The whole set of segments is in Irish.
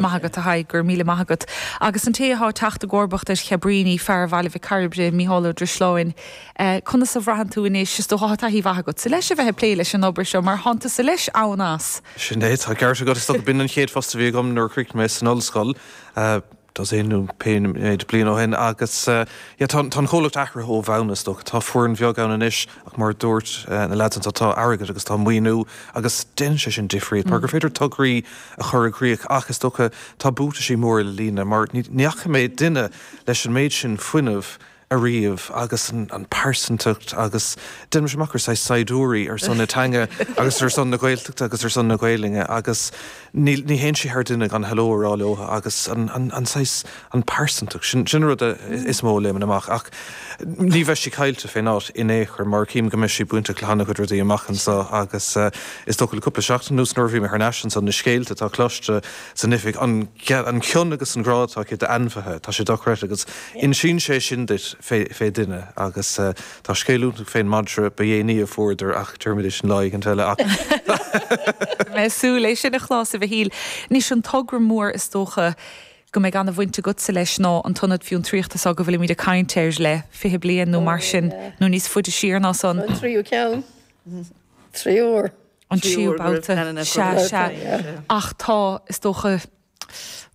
Maith agat, a Thaidhg, go raibh míle maith agat. Agus an té athá teacht i gcomharbacht ar Cabríní, fear Bhaile Mhic Cairbre, Mícheál Ó Drisleáin, conas a bhraitheann tú anois, is dócha athá taithí mhaith agatsa leis a bheith ag plé leis an obair seo, mar athánn tusa leis ann. Sin é, tá an ceart agat, is dócha, b'in an chéad phost a bhí agam nuair a chríochnaigh mé san ollscoil, dosaen nó pé méid bliain ó shin, agus tá an comhlacht athraithe ó bhonn, is dócha, tá foireann bheag ann anois, Ach mar a dúirt na leaids anseo, tá airgead agus tá maoiniú agus déanann sé sin difríocht mar gur féidir tograí a chur i gcrích ach is dócha tá buataisí móra le líonadh mar ní fhaca mé duine leis an méid sin fuinnimh ariamh agus an pearsantacht agus déanaimse amach gur saghas saighdiúirí ar son na teanga agus ar son na Gaeltachta agus ar son na Gaolainne agus níl, ní théann sí thar duine gan hello a rá leo agus an, an, an saghas, an pearsantacht sin, sin an rud a, is mó a léimeann amach ach ní bheadh sí caillte fén áit in aon chor mar a chím go mbeidh sí bainteach le han-chuid rudaí amach anseo agus is dócha le cúpla seachtain anuas nuair a bhí mé thar n-ais anso, na scéalta atá cloiste san oifig, an, an cion agus an grá atá aici d'ainmhithe, tá sé dochreidte agus insíonn sé sin duit fé, fé dhuine agus. Tá scéal iontach fén madra ba dhéanaí a fuaireadar ach déarfaimid é sin lá éigin eile. Beidh mé ag súil é sin a chlos, a Mhichíl. Anois, an togra mór is dócha go mbeidh an-bhaint agatsa leis ná an tIonad Fiontraíochta seo go bhfuilimid ag caint air le fiche bliain nó mar sin, nó níos faide siar ná san. An tríú ceann. Triúr. An tríú babhta. Sea, sea. Ach tá, is dócha.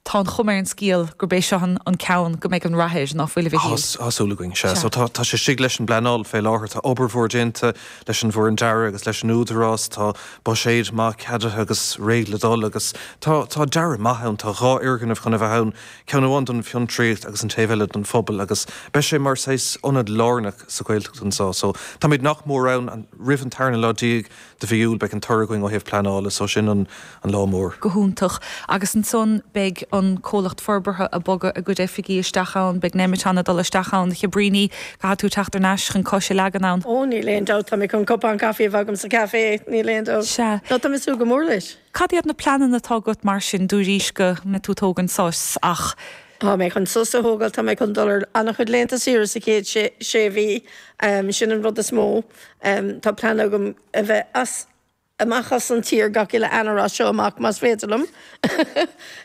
tá an chuma ar an scéal gurb é seo an ceann go mbeidh an rath air ná fuil a Mhichíl. Tá súil againn. Sea, so tá sé istigh leis an bpleanáil fé láthair. Tá obair mhór déanta leis an bhfoireann dearaidh agus leis an Údarás. Tá buiséad maith ceadaithe agus réidh le dul agus tá dearadh maith ann. Tá dhá fhoirgneamh chun a bheith ann, ceann amháin don fiontraíocht agus an taobh eile don phobal agus beidh sé mar saghas ionad lárnach sa Ghaeltacht anso. So táimid nach mór ann roimh an tarna lá déag. de mhí Iúil beidh an toradh againn ó thaobh pleanála so sin an an lá mór. Go hiontach. Agus ansan beidh an comhlacht forbartha ag bogadh a gcuid oifigí isteach ann, beidh Nemeton ag dul isteach ann, Chabríní, caithfidh tú teacht ar n-ais chun cos a leagan ann. Ó níl aon dabht, tá mé chun cupán caife a bheith agam sa café, níl aon dabht. Sea. Ó tá mé ag súil go mór leis. Cad iad na pleananna atá agat mar sin dúraís go mbeidh tú ag tógaint sos ach. Tá mé chun sos a thógáil, tá mé chun dul ar an-chuid laethanta saoire sa chéad sé mhí, sin an rud is mó. Tá plean agam a bheith amach as an tír gach uile Eanáir as seo amach más féidir liom.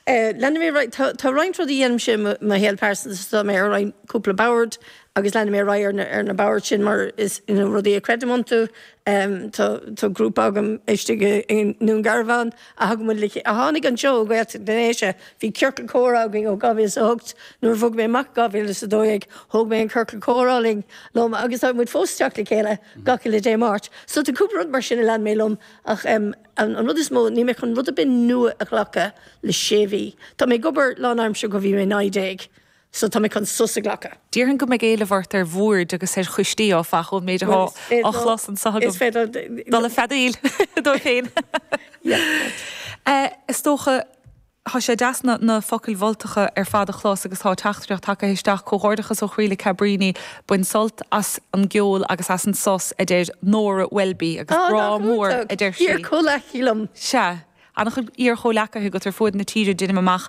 Leanfaidh mé, tá roinnt rudaí a dheinimse i mo shaol pearsanta, tá mé ar roinnt cúpla boird, agus leanfaidh mé ar aghaidh ar na boird sin mar is rudaí a creidim iontu. Tá grúpa agam istigh i nDún Garbhán a thugann muid Licea. a tháinig anseo ó Ghaeltacht na nDéise. Bhí ciorcal comhrá againn ó 2008, nuair a bhog mé amach i 2012, thóg mé an ciorcal comhrá liom agus tá muid fós ag teacht le chéile gach uile Dé Máirt. So tá cúpla rud mar sin a lean mé liom ach an rud is mó, níl mé chun rud ar bith nua a ghlacadh le sé mhí. Tá mé ag obair lánaimseartha ó bhí mé naoi déag. so tá mé chun sos a ghlacadh. Déarfainn go mbeidh éileamh ort ar bhoird agus ar choistí, áfach, ón méid atá á chlos anseo agam. Is féidir dul ag feadaíl, a dúirt féin. Is dócha, tá sé deas na focail mholtacha ar fad a chlos agus tá teachtaireacht tagtha isteach, Comhghairdeachas ó chroí le Cabríní, bain sult as an gceol agus as an sos, a deir Nóra Welby, agus grá mór, a deir sí. Sea, An-chuid iar-chomhleacaithe agat ar fuaid na tíre, deinim amach.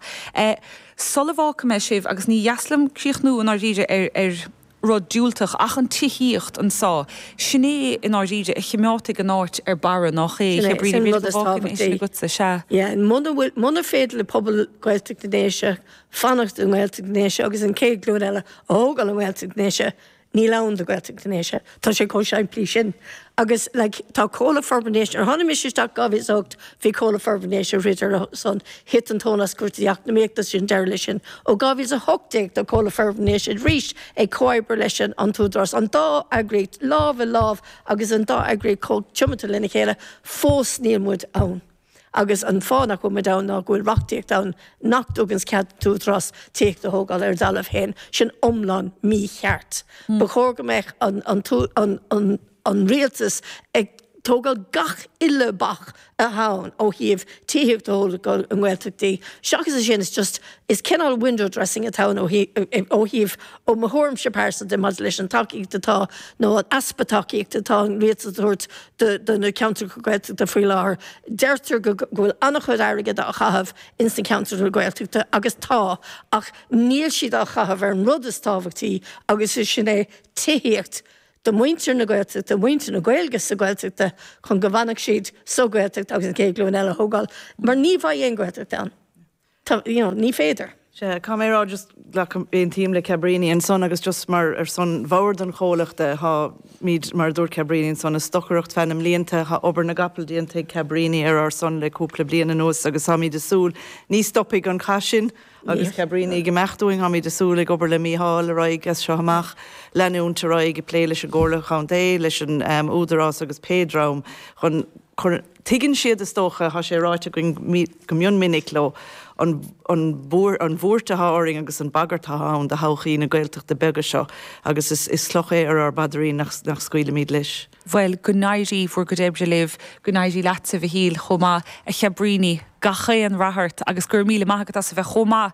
Sula bhfágfaidh mé sibh, agus ní deas liom críochnú i ndáiríre ar rud diúltach, ach an tithíocht anseo, sin é i ndáiríre a chimeádfaidh an áit ar barra, nách é, Sin é, sin an rud is tábhachtaí. Yeah, muna féidir le pobal Gaeltacht na nDéise fanacht i nGaeltacht na nDéise agus an céad glúin eile a thógáil i nGaeltacht na nDéise, Níl ann do Ghaeltacht na nDéise. Tá sé chomh simplí sin. Agus like tá Comhlucht Forbartha na nDéise, nuair a tháinig mise isteach in 2008 bhí Comhlucht Forbartha na nDéise ag throid ar a son, thit an tóin as cúrsaí eacnamaíochta, sin deireadh leis sin. Ó 2018 tá Comhlucht Forbartha na nDéise arís ag comhoibriú leis an tÚdarás, an dá eagraíocht lámh i lámh agus an dá eagraíocht chomh tiomanta lena chéile, fós níl muid ann. agus an fáth nach bhfuil muid ann ná go bhfuil reachtaíocht ann nach dtuganns cead don Údarás tithíocht a thógáil ar a dtalamh féin, sin iomlán mícheart. Ba chóir go mbeadh an rialtas ag tógáil gach uile bac atá ann ó thaobh tithíocht a thógáil i nGaeltachtaí. Seachas é sin, is just, is cineál window dressing atá ann ó thaobh, ó mo thuairimse pearsanta, maidir leis an tacaíocht atá, nó an easpa tacaíochta atá an rialtas a thabhairt do na ceantracha Gaeltachta faoi láthair. Deirtear go bhfuil an-chuid airgid á chaitheamh ins na ceantracha Gaeltachta agus tá, ach níl siad á chaitheamh ar an rud is tábhachtaí agus is sin é tithíocht do mhuintir na Gaeltachta, mhuintir na Gaeilge sa Ghaeltacht chun go bhfanfadh siad sa Ghaeltacht agus an chéad ghlúin eile a thógáil mar ní bheidh aon Ghaeltacht ann. tá, you know, ní féidir. Sea, caithfidh mé a rá, just, glacaim, aontaím le Cabrini ansan agus just mar, ar son bhord an chomhluchta, tháimíd, mar a dúirt Cabrini ansan, ag stocaireacht feadh na mblianta, thá obair na gcapall déanta ag Cabrini ar ár son le cúpla bliain anuas agus tháimíd a' súil, ní stopfaidh an cath sin agus Cabrini ag imeacht uainn, tháimíd a' súil, ag obair le Mícheál ar aghaidh as seo amach, leanúint ar aghaidh ag plé leis an gComhairle Chontae, leis an, ehm, Údarás agus pé dream chun, Tuigeann siad, is dócha, atá sé ráite againn go mion minic leo, an bhuairt atá orainn agus an bagairt atá ann do thodhchaí na Gaeltachta bige seo agus is cloch é ar ár bpaidrín nach scaoilimid leis. Bhuel, go n-éirí bhur gcuid oibre libh, go n-éirí leat sa saol chomh maith, a Chabríní, gach aon rath ort agus go raibh míle maith agat as a bheith chomh maith